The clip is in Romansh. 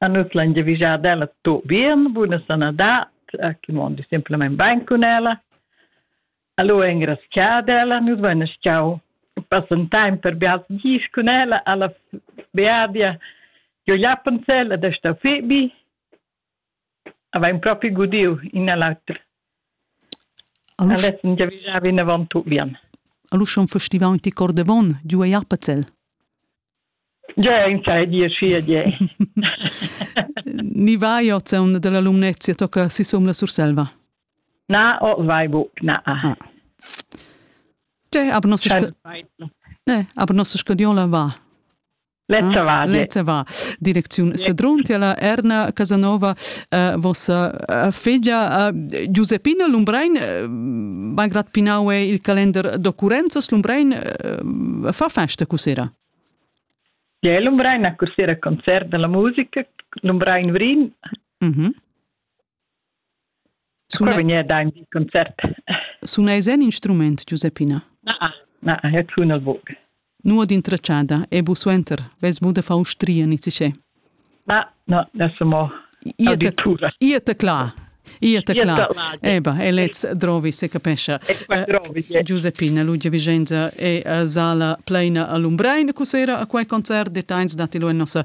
A nus l'han giavüschà d'ella tuot bien, buna sanadad, chi mondi simplamaing bain cun ella. Alura ingrazchà d'ella nus vaina schau passentaim per bials dis cun ella alla beadia giò Jappensell ed è stà fich bi. Avain propi gudiu in a l'auter. Alura essan giavischà vinavant tut bien. Alura schon festivà ti cor davon, giu ei Apazell? Già in sai di schi a giè. Ni vai ot un della lumnezia tocca si som la Surselva? Na, o vai buc, na. Ah. Te, aber nossa, ne, aber nossa scadiola va. Lezza va. Lezza va. Direcziun Sedrun tiela Erna Casanova, uh, vossa uh, figlia uh, Giuseppina Lumbrein, uh, malgrad pinau è il calender d'occurrenzas, Lumbrein uh, fa festa cusera. Ja, Lumbrein ha cusera concert della musica, Lumbrein Vrin. Mm -hmm. Sun ei vegniu da in concert? Sun ei sen instrument, Giuseppina? Na, na, eu tun el buc. Nuot intratschada, e bu suenter, vess bu de far ustria ni sichè. Na, no, ne so mo auditura. Ia te cla. Ia te cla. Eba, e lez drovi, se capescha. Giuseppina, Lugia Vicenza è a sala pleina a Lumbrein, cos'era a quei concert, deteins dati lu en nossa